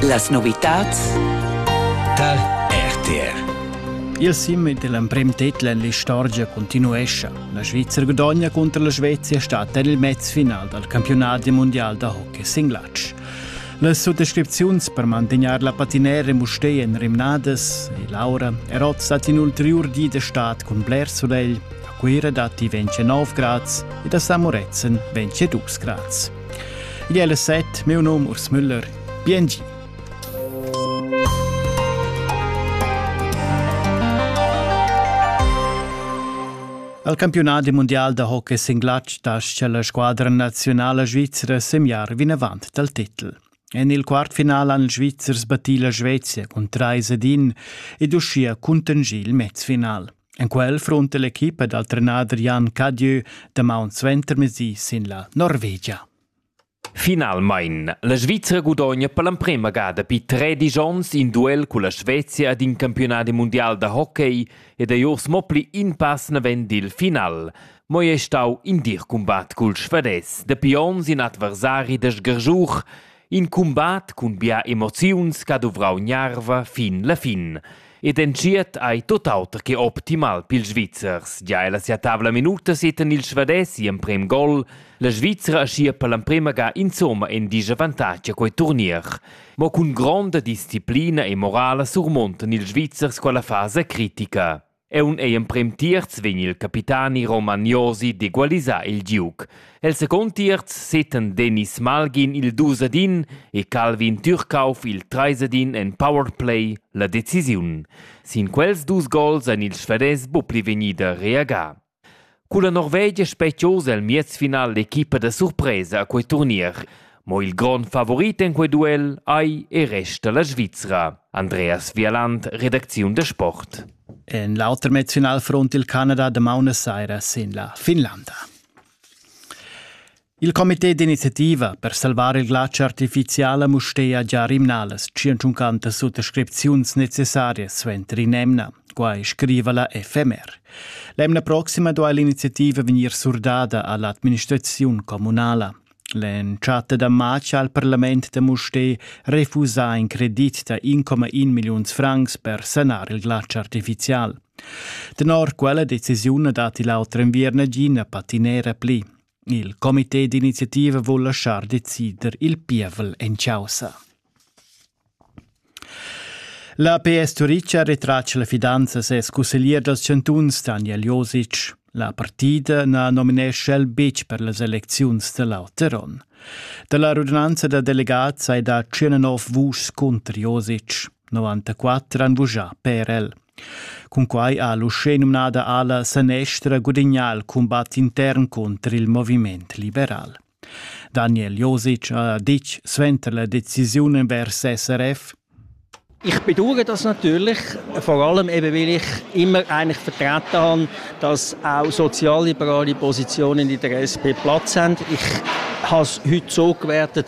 Las novitads tar RTR. Il sim ed l'emprim titel en l'istorgia continuescha. La Svizzera gudogna contro la Svezia stat en il mezfinal dal campionat mondial da hockey singlatsch. Las suttascripziuns per mantegnair la patinera in Mustei en Rimnadas e Laura erozza in ulteriur di de stat cun bler solegl. A Cuira datti 29 grads ed a Samorezen 22 grads. Igl è las set, meu nom Urs Müller. Biengi! Al campiunadi mundial da hockey singlatg tascha la squadra nazionala svizra semiar vinavant dal titel. En il quartfinal han Svizzers battì la Svezia cun trais ed in ed uschia cuntanschì il mezfinal. En quel frunta l'equipa dal trenader Jan Cadieu damaun suentermezdi sin la Norvegia. Finalmein, la Svizra gudogna per l'emprema ga dapi tre dis onns in duel con la Svezia ed in campionat mondial da hockey ed ei urs mo pli in pass naven dil final. Mo ei stau in dir combat cul Svades dapi onns in adversari da Sgersuch In cumbat cun bia emoziuns che ha duvrau gnarva fin la fin. Ed entschiet ei tut auter che optimal pils Svizzers. Gia ella sia tavla minuta setan ils Svadès gl'emprem gol. La Svizzera aschia per l'emprema ga insomma in disavantatg a quei turnier. Mo cun gronda disciplina e morala surmontan ils Svizzers quella fasa critica. Aunc ei emprem tierz vegn il capitani Roman Josi d'egualisar il giug. El second tierz seten Dennis Malgin il dusadin e Calvin Türkauf il treisadin en powerplay la decisiun. Sin quels dus gols ein ils Sveriges buca pli vegnida reagà. Culla Norvegia spetg'oz el miezfinal l'equipa da surpresa a quei turnier. Mo il grond favorit en quei duel ei e resta la Svizra. Andreas Vialand, redacziun da sport. En l'auter mezzfinalfront il Canada damaun saira sin la Finlanda. Il comité d'iniziativa per salvar il glatsch artificial a Mustér già rimnalas 150 suttascripziuns necessarias suenter in'emna. Quai scriva la FMR. L'emna proxima duai l'iniziativa vegnir surdada a l'administraziun communala. L'entschatta da matg ha il parlament da Mustér refusà in credit da 1,1 milliuns francs per sanar il glatsch artificial. Tenor quella decisiun datti l'auter enviern gina patinera pli. Il comité d'iniziativa vul laschar decider il pievel en chaussa. La PS Turica retratg la fidanza ses cusseglier dals chantuns Daniel Josic. La partida na nominescha el betg per las elecziuns da l'Auteron. Da la radunanza da delegats hai dà 109 vuschs cunter Josic. 94 han vuschà per el. Cunquai ha l'uschenumnada ala sanestra gudignà il cumbat intern cunter il moviment liberal. Daniel Josic ha ditg suenter la decisiun envers SRF ich bedauere das natürlich, vor allem eben, weil ich immer eigentlich vertreten habe, dass auch sozialliberale Positionen in der SP Platz haben. Ich habe es heute so gewertet,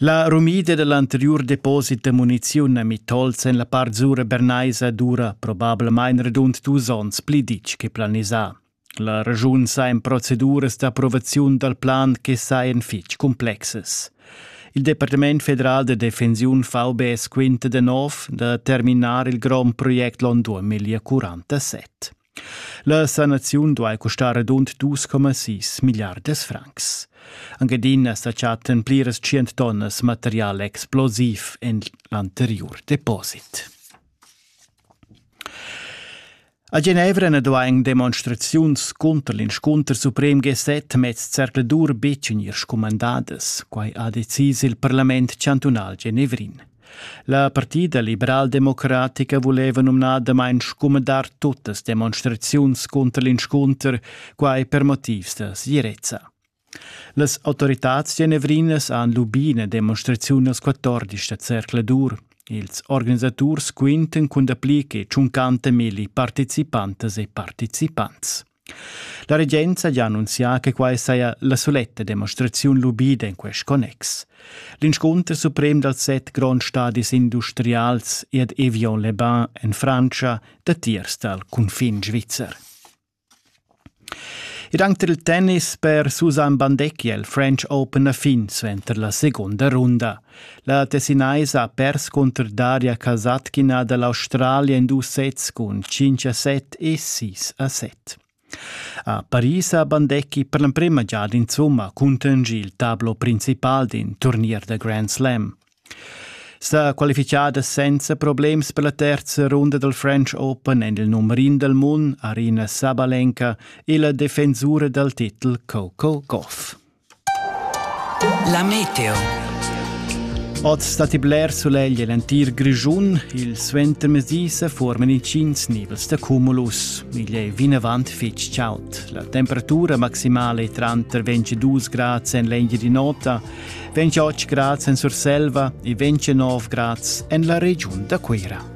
La rumida dall'anteriur deposit da muniziun a Mitolz en la part sura bernaisa dura probablamain radund dus onns pli ditg che planisà. La regiun sa en proceduras d'approvaziun dal plan che sajan fitg complexes. Il Departament federal de defensiun VBS quinta de nov da terminar il grond project l'on 2047. La sanaziun duai custar radund 2,6 milliardas francs. Anche adina sa chattan pliras tschient tonnas material explosiv en l'anteriur deposit. A Genevra na duain demonstraziuns cunter l'inscunter suprem G7 mez zercladur betg vegnir scumandadas. Quai ha decis il parlament chantunal genevrin. La partida liberaldemocratica vuleva numnadamain scumandar tuttas demonstraziuns cunter l'inscunter, quai per motivs da segirezza. Las autoritads genevrinas han lubì ina demonstraziun als 14 da Cercle d'Or. Ils organisaturs quintan cun dapli che 50.000 participantas e partizipants. La regenza ha annunzià che quai saja la suletta demonstraziun lubida en quest connex. L'inscunter suprem dals set gronds stadis industrials ed Evian-le-Bain en Frantscha datiers dal cunfin svizzer. Ed anche il tennis per Susanne Bandecchi è il French Open a fin suenter la seconda runda. La Tessinaisa ha pers cunter Daria Casatgina da l'Australia in dus sets cun 5 a 7 e 6 a 7. A Paris ha Bandecchi per l'emprema giada insumma cuntegni il tablo principal d'in turnier da Grand Slam. Sta qualifichada senza problems per la terza runda dal French Open en il numer in dal mund Arina Sabalenka e la defensura dal titel Coco Gauff. La meteo. Oz datti bler sulegl en l'entir Grischun. Il suentermezdi se forman intgins nivels da cumulus. Igl è vinavant fitg chaud. La temperatura maximala è tranter 22 grads en l'engia di nota, 28 grads en Surselva e 29 grads en la regiun da Cuira.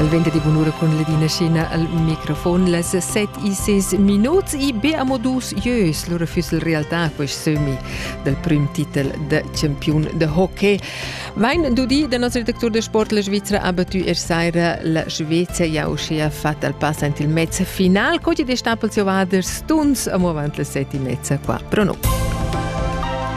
El venta di bunura cun Ledina Scena al microfon las set e ses minuts e be amo dus ieus lura füss il realtà quest sömi dal prim titel da campiun de hockey. Mein du di, der Nazirdirektor der Sportler Svizra ha battu er saira la Svezia ja uschia fatta al pass ant il mezza final, co di de Stapels Ovaders stuns amo avant las set e mezza qua. Però no.